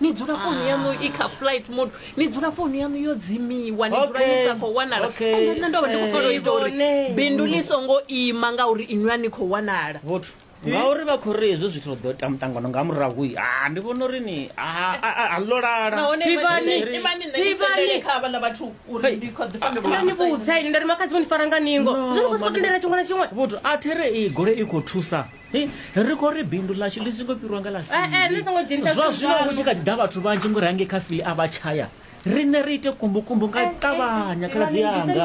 ni dzula founu yanu i kha flight mode ni dzula founu yanu yo dzimiwa ni dzula ni sa khou wanala ende nṋe ndo vha ndi khou fanela u ita uri bindu ḽi songo ima ngauri inwi a ni khou wanala vhuthu ngauri vha khou ri hezwo zwithu ḓo ita muṱangano nga murahu ha ah, ndi vhona uri ni ah, ah, a ḽo lalani vhudza ini nda ri makhadzimu ni fara nga ningo zwo ni khou sokou tendela tshiṅwe na tshiṅwe vhuthu a there i gole i khou thusa ri khou ri bindu ḽashu ḽi songo fhirwa nga ḽa zwa zwino hu tshi kha ḓi ḓa vhathu vhanzhi ngori hangei kha fili a vha tshaya riṋe ri ite kumbukumbu nga ṱavhanya khaladzi yanga